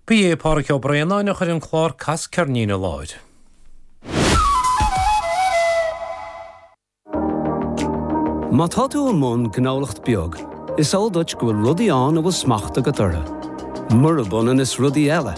Ba é Pádraig Ó Braonáin a chuir an clár Cas Ceirnín i láthair. Má tá tú i mbun gnólachta beag, is eol duit go bhfuil rudaí ann a bhfuil smacht agat orthu. Murab ionann is rudaí eile.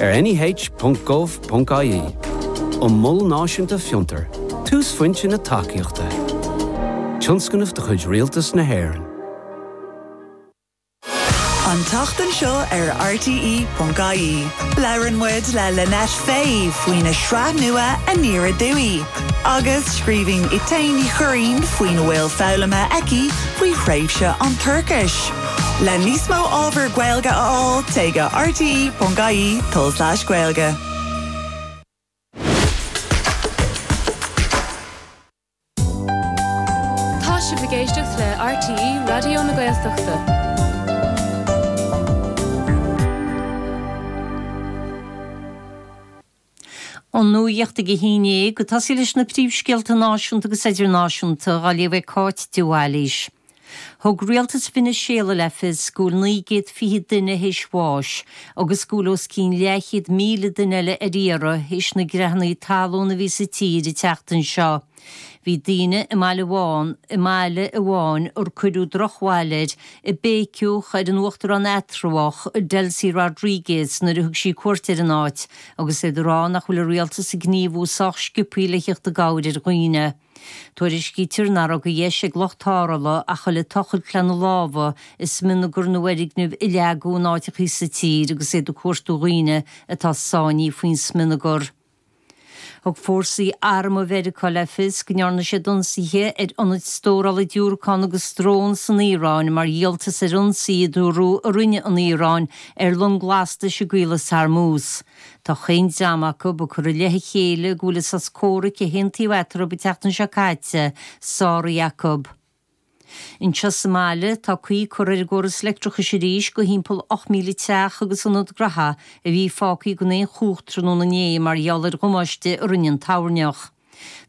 ar neh.gov.ie an Mol Náisiúnta Fiontar, túsphointe na tacaíochta, tionscnamh de chuid Rialtas na hÉireann. An tseachtain seo ar rte.ie, labhrann muid le Lynette Fay faoina sraith nua Aniar Aduaidh agus scríobhann Etain Ní Churraoin faoina bhfuil foghlamtha aici faoi thréimhse an turais. Le níos mó ábhar Gaeilge a fháil, téigh go rte.ie Gaeilge. Tá sibh ag éisteacht le RTÉ Raidió na Gaeltachta. An nuacht ag a haon déag ag tosaí leis na príomhscéalta náisiúnta agus idirnáisiúnta á léamh ag Cáit de Bhailís. Thug Rialtas Veiniséala le fios go bhfuil naoi gcéad fiche duine théis bháis agus go bhfuil os cionn leathchéad míle duine eile ar iarraidh théis na gcreathanna talún a bhí sa tír an tseachtain seo. Bhí daoine i mbaile amháin, i mbaile amháin ar cuireadh drochbhail air, ag béiceach ar an uachtarán eatramhach, Delcy Rodriguez, nuair a thug sí cuairt ar an áit, agus iad ag rá nach bhfuil an rialtas ag gníomhú sách sciobthaí le theacht i gcabhair ar dhaoine. Tuairiscítear nach raibh de dheis ag lucht tarrthála ach a ghoil ag tochailt lena lámha i smionagar na bhfoirgneamh a leagadh in áiteachaí sa tír agus iad ag cuartú dhaoine atá sáinní faoin smionagar. Thug fórsaí armtha Mheiriceá le fios go ndearna siad ionsaithe ar ionaid stórála diúracán agus drón san Iaráin mar dhíoltas ar ionsaí a dúradh a rinne an Iaráin ar long lastais i gCaolas Hormuz. Tá chaon dream acu ag cur i leith a chéile go bhfuil an sos comhraic a haontaíodh eatarthu an tseachtain seo caite sáraithe acu. Anseo sa mbaile, tá caoi curtha ar an gcóras leictreachais arís do thimpeall 8,000 teach agus ionad graithe a bhí fágtha gan aon chumhacht tráthnóna inné mar gheall ar dhamáiste a rinne an toirneach.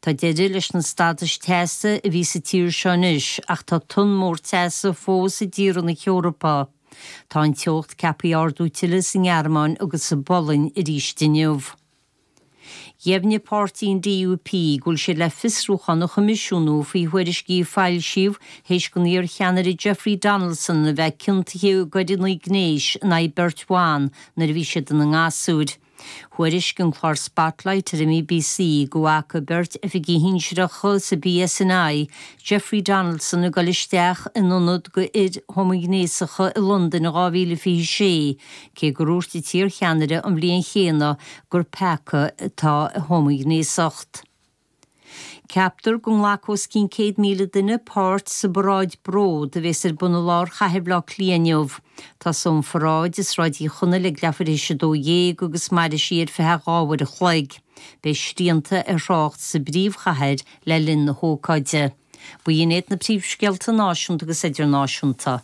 Tá deireadh leis na stadais teasa a bhí sa tír seo anois ach tá tonn mór teasa fós i dtíortha na hEorpa. Tá an teocht ceaptha ardú tuilleadh sa nGearmáin agus sa bPolainn arís inniu. Dheimhnigh páirtí an DUP go bhfuil siad le fiosrúchán a choimisiúnú faoi thuairiscí a foilsíodh théis don iar-cheannaire Jeffrey Donaldson a bheith ciontaithe i gcoireanna gnéis in aghaidh beirt bhan nuair a bhí siad ina ngasúir. Thuairisc an clár Spotlight ar an mBBC go bhfaca beirt oifigigh shinsearacha sa PSNI Jeffrey Donaldson ag dul isteach in ionad d'fhir homaighnéasacha i Londain in 2026, Cé gur úirt an t-iar-cheannaire an bhliain chéanna gur peaca atá i homaighnéasacht, ceaptar go nglacfaidh os cionn 100,000 duine páirt sa bparáid 'Bród' a bheas ar bun i lár chathair Bhaile Átha Cliath inniu. Tosóidh an pharáid i Sráid Uí Chonaill ag leath uair théis a dó dhéag agus mairfidh sí ar feadh dhá uair an chloig. Beidh srianta ar thrácht sa bpríomhchathair le linn na hócáide. B'in iad na príomhscéalta náisiúnta agus idirnáisiúnta.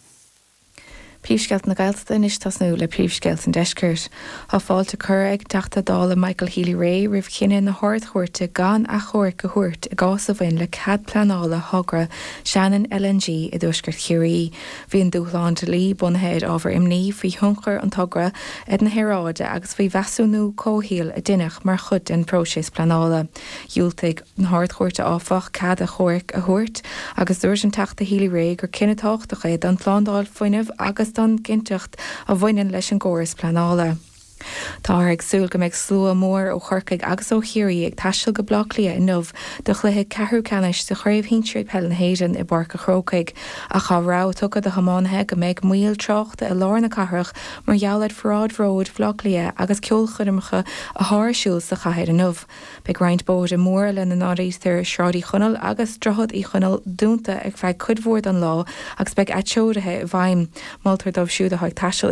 Príomhscéalta na Gaeltachta anois tosnú le príomhscéalta an Deiscirt. Tá fáilte curtha ag an Teachta Dála Michael Healy-Rae roimh chinneadh na hArd-Chúirte gan achomhairc a thabhairt i gcás a bhain le cead pleanála thogra Shannon LNG i dtuaisceart Chiarraí. Bhí an dúshlán dlí bunaithe ar ábhar imní faoi thionchar an togra ar na haeráide agus faoi mheasúnú comhshaoil a deineadh mar chuid den phróiseas pleanála. Dhiúltaigh. na hArd-Chúirte, áfach, cead achomhairc a thabhairt agus dúirt an Teachta Healy-Rae gur cinneadh tábhachtach é don tslándáil fuinnimh agus don gcinnteacht a bhaineann leis an gcóras pleanála. Táthar ag súil go mbeidh slua mór ó Chorcaigh agus ó Chiarraí ag taisteal go Baile Átha Cliath inniu do chluiche ceathrú ceannais de Chraobh Shinsir Peile na hÉireann i bPáirc a' Chrócaigh ach tá rabhadh tugtha do thiománaithe go mbeidh moill tráchta i lár na cathrach mar gheall ar Pharáid Bhróid Bhaile Átha Cliath agus ceolchoirmeacha atá ar siúl sa chathair inniu. Beidh roinnt bóithre móra, lena n-áirítear Sráid Uí Chonaill agus Droichead Uí Chonaill, dúnta ar feadh cuid mhór den lá agus beidh atreoruithe i bhfeidhm. Moltar dóibh siúd atá ag taisteal